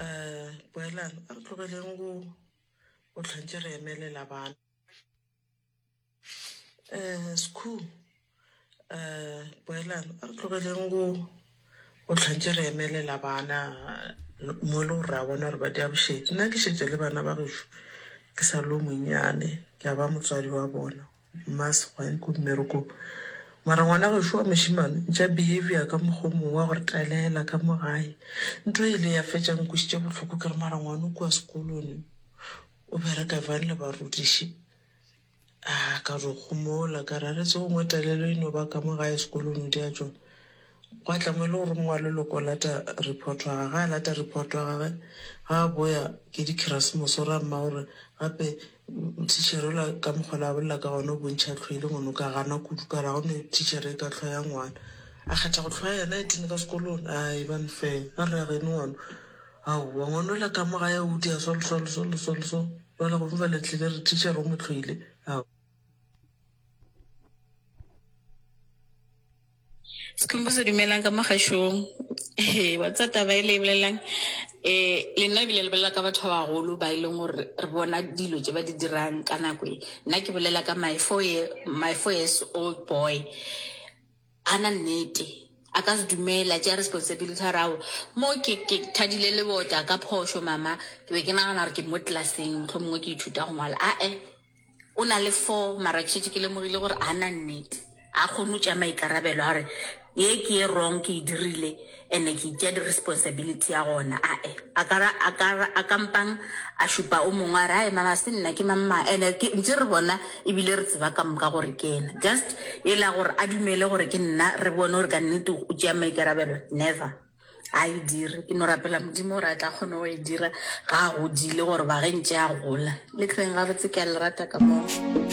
um boelang a re tlogeleng go go tlhwantse re emelela bana um skhu um boelang a re tlogeleng go go tlhwantse re emelela bana mo e le gore ra bona gore ba di abušetse nna ke šetse le bana ba gešo ke sa lo monyane ke a ba motswadi wa bona Mma Sogwai ko mmerekong. Mara ngwana gešo wa mošemane ntša behavior ka mokgwa o mongwe wa go re talela ka mo gae. Nto e ile ya fetša nkwešiša bohloko ke re mara ngwana o kua sekolone o bereka bjang le barutiši. A ka re o kgomola ka re a re tse gongwe talelo e no ba ka mo gae sekolone o di a tšona. Gwa tla mo e le gore mongwe wa leloko o lata report wa gage. Ga a lata report wa gage, ga a boya ke dikherasemose, o ra mma gore gape tichere ola ka mokgwa la bolela ka gona o bontšha tlhwe e le ngone o ka gana kudu ka ra gone tichere e ka tlhwa ya ngwana. A kgetha go tlhwa yena e tene ka sekolong. A e ba nfeng a re agene ngwana. Aowa ngwana ola ka mo gae a udia solsolsolsolso jwale go fela le tlile re tichere o mo tlhwile. Sekhumbuzo dumelang ka mo gašong. Ee, wa tsa taba e le e bolelelang um le nna ebile le bolela ka batho ba bagolo ba e leng gore re bona dilo tse ba di dirang ka nako e. Nna ke bolela ka my four year, my four years old boy. A na nnete, a ka se dumele, a tšea responsibility a re aowa mo ke ke thadile lebota ka phošo mama, ke be ke nagana gore ke mo tlelaseng mohlomongwe ke ithuta go ngwala, ae. O na le four mara ke šetše ke lemogile gore a na nnete, a kgone go tšea maikarabelo a gore ye ke ye wrong ke e dirile and-e ke itšea di responsibility ya gona. A-e, a ka ra, a ka ra, a ka mpang a šupa o mongwe a re ae mara ga se nna ke mang mang and-e ke ntše re bona ebile re tseba ka moka gore ke yena. Just e la gore a dumele gore ke nna re bone gore ka nnete o tšea maikarabelo, never. ga e dire ke no rapela modimo gore a tla kgone go e dira ga a godile gore ba ge ntse a gola le tleng gabotse ke a le rata ka moo